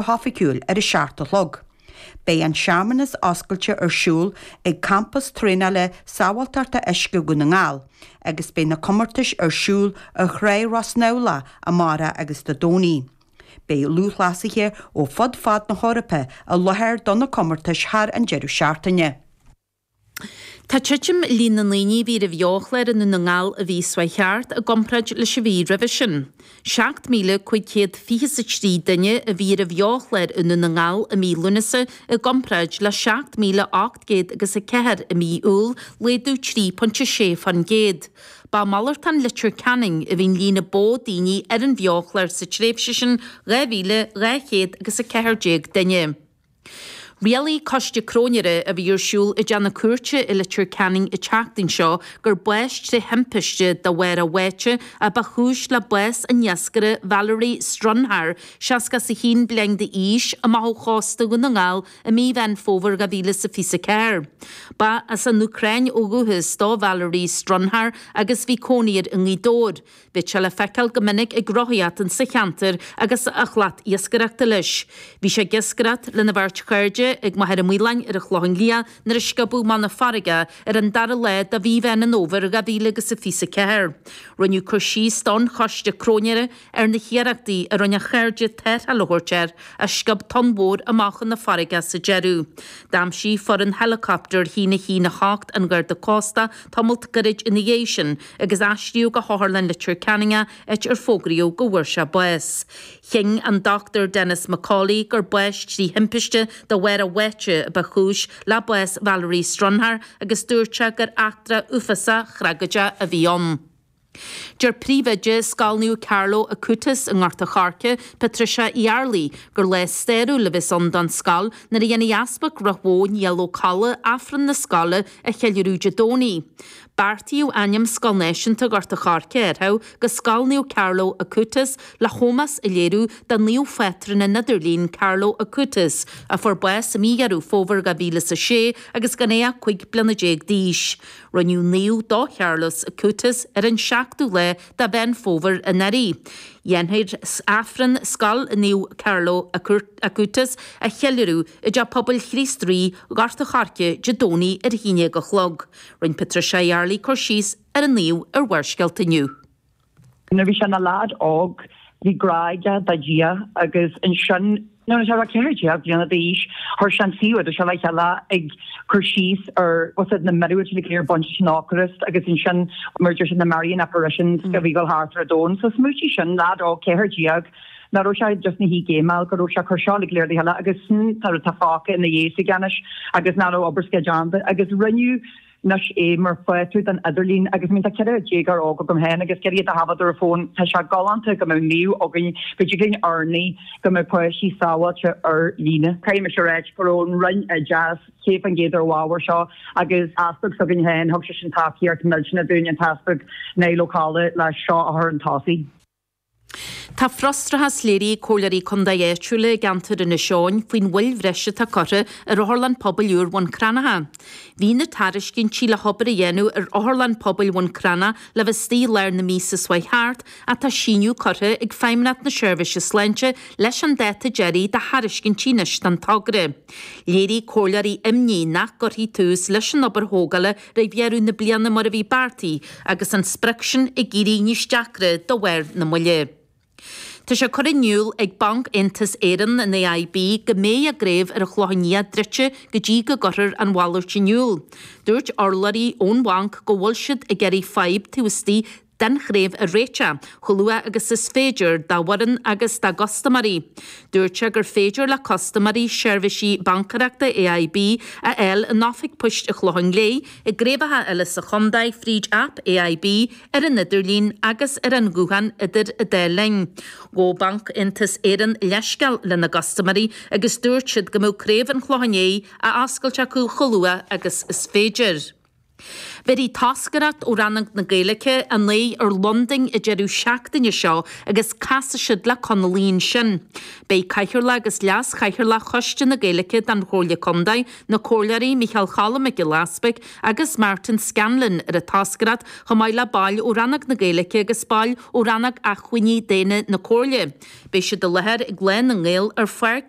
hoifigiúil ar a seacht a chlog. Beidh an searmanas oscailte ar siúl ag Campas Traenála Sábháilteachta Uisce Dhún na nGall agus beidh na comórtais ar siúl ar Thrá Ros Neamhlach amárach agus Dé Domhnaigh. Beidh lúthchleasaithe ó fud fad na hEorpa i láthair do na comórtais thar an deireadh seachtaine. Tá titim i líon na ndaoine a bhí ar an Bheochlár i nDún na nGall an mhí seo chuaigh thart i gcomparáid leis an mhí roimhe sin. 7,500 fiche is a trí duine a bhí ar an Bheochlár i nDún na nGall i mí Lúnasa i gcomparáid le 7,800 agus a ceathair i mí Iúil, laghdú 3.6%. Ba i malartán Leitir Ceanainn a bhí an líon ba mhó daoine ar an Bheochlár sa tréimhse sin 2,200 agus a ceathair déag duine. Rialaigh coiste cróinéara a bhí ar siúl i dteach na cúirte i Leitir Ceanainn an tseachtain seo gur bás tré thimpiste de bharr a bháite a ba chúis le bás an iascaire Valerii Strunhar, 61 bliain d'aois, amach ó chósta Dhún na nGall i mí Mheán Fómhair 2024. Ba as an Úcráin ó dhúchas do Valerii Strunhar agus bhí cónaí air i nGaoth Dobhair. Bhíodh sé le feiceáil go minic ag rothaíocht sa cheantar agus a shlat iascaireachta leis. Bhí sé ag iascaireacht lena bheirt chairde ag Machaire Maoláin ar an Chlochán Liath nuair a sciobadh amach chun na farraige é ar an dara lá de mhí Mheán an Fhómhair dhá mhíle agus a fiche is a ceathair. Rinneadh cur síos don choiste cróinéara ar na hiarrachtaí a rinne a chairde tarrtháil a thabhairt air ach sciob tonn mhór amach chun na farraige é sa deireadh. D'aimsigh foireann heileacaptair 118 an Gharda Cósta é tamalt gairid ina dhiaidh sin agus aistríodh go hOtharlann Leitir Ceanainn áit ar fógraíodh go bhfuair sé bás. Chinn an Dr Denis McCauley gur bás trí thimpiste de bharr a bháite a ba chúis le bás Valerii Strunhar agus dúirt sé gur eachtra uafásach thragóideach a bhí ann. Deir príomhoide Scoil Naomh Carlo Acutis i nGort a' Choirce, Patricia Uí Arlaigh, gur lá stairiúil a bheas ann don scoil nuair a dhéanfaidh Easpag Ráth Bhoth Niall Ó Colla Aifreann na scoile a cheiliúradh Dé Domhnaigh. Beartaíodh ainm Scoil Náisiúnta Ghort a' Choirce a athrach go Scoil Naomh Carlo Acutis le hómós a léiriú do naomh phátrún an idirlín, Carlo Acutis, a fuair bás i mí Dheireadh Fómhair 2006 agus gan é ach 15 bliana d'aois. Rinneadh naomh do Charlos Acutis ar an 7ú lá de Mheán Fómhair anuraidh. Dhéanfar Aifreann Scoil Naomh Carlo Acutis a cheiliúradh i dTeach Pobail Chríost Rí, Gort a' Choirce, Dé Domhnaigh ar a haon déag a chlog. Rinne Patricia Uí Arlaigh cur síos ar an naomh ar Bharrscéalta inniu. Nuair bhí sé ina lad óg bhí grá aige do Dhia agus ansin nuair a bhí sé 14 bliana d'aois chuir sé an suíomh idirlín seo le chéile ag cur síos ar tá a fhios agat na míorúiltí go léir bainte leis an Eocairist agus ansin mar a deir sé na Marian apparitions a bhí ag dul thart ar an domhan. So smaointigh air sin, lad óg 14, ná raibh sé just ina shuí ag géimeáil, go raibh sé cur seo uilig léir le chéile agus sin atá fágtha ina dhiaidh aige anois agus ná raibh obair s'aige déanta. Agus rinneadh anois é mar phátrún den idirlíon agus I mean tá ceithre déagóir óg agam féin agus ceithre iad a thábhachtar ar fón tá sé galánta go mbeadh naomh againn go dtig linn urnaí go mbeadh páistí sábháilte ar líne. Caithfidh mise a ráit go raibh an Roinn Oideachais céad fán gcéad ar an ábhar seo agus easpag s'againn féin thug sé sin tacaíocht millteanach dúinn an tEaspag Niall Ó Colla le seo a chur 'un tosaigh. Tá frustrachas léirithe ag Comhairleoirí Contae áitiúla i gceantar Inis Eoghain faoin mhoill bhreise atá curtha ar Otharlann Pobail úr Bhun Cranncha. Bhí na tairiscintí le hobair a dhéanamh ar Otharlann Pobail Bhun Cranncha le bheith istigh i lár na míosa seo chuaigh thart ach tá síneadh curtha ag Feidhmeannacht na Seirbhise Sláinte leis an dáta deiridh do thairiscintí anois don togra. Léirigh Comhairleoirí imní nach gcuirfí tús leis an obair thógála roimh dheireadh na bliana mar a bhí beartaithe agus an sprioc sin ag éirí níos deacra de bharr na moille. Tá sé curtha in iúl ag Banc-Aontas Éireann, an AIB, go mbeidh a gcraobh ar an Chlochán Liath druidte go dtí go gcuirtear an mhalairt in iúl. Dúirt urlabhraí ón bhanc go bhfuil siad ag iarraidh fadhb taobh istigh den chraobh a réiteach chomh luath agus is féidir dá bhfoireann agus dá gcustaiméirí. Dúirt sé gur féidir le custaiméirí seirbhísí bancaerachta AIB a fháil in oifig poist an Chlocháin Léith, i gcraobhacha eile sa chontae fríd aip AIB ar an idirlíon agus ar an ghuthán idir an dá linn. Ghabh Banc-Aontas Éireann leithscéal lena gcustaiméirí agus dúirt siad go mbeadh craobh an Chlocháin Léith á oscailt acu chomh luath agus is féidir. Bhéarfaidh toscaireacht ó Rannóg na Gaeilge a n-aghaidh ar Londain an deireadh seachtaine seo agus casfaidh siad le Conallaigh ansin. Beidh Cathaoirleach agus Leas-Chathaoirleach Choiste na Gaeilge den Chomhairle Contae, na Comhairleoirí Micheál Choilm Mac Giolla Easbuig agus Martin Scanlon ar an toscaireacht chomh maith le baill ó Rannóg na Gaeilge agus baill ó Rannóg Acmhainní Daonna na Comhairle. Beidh siad i láthair ag Lá na nGael ar Pháirc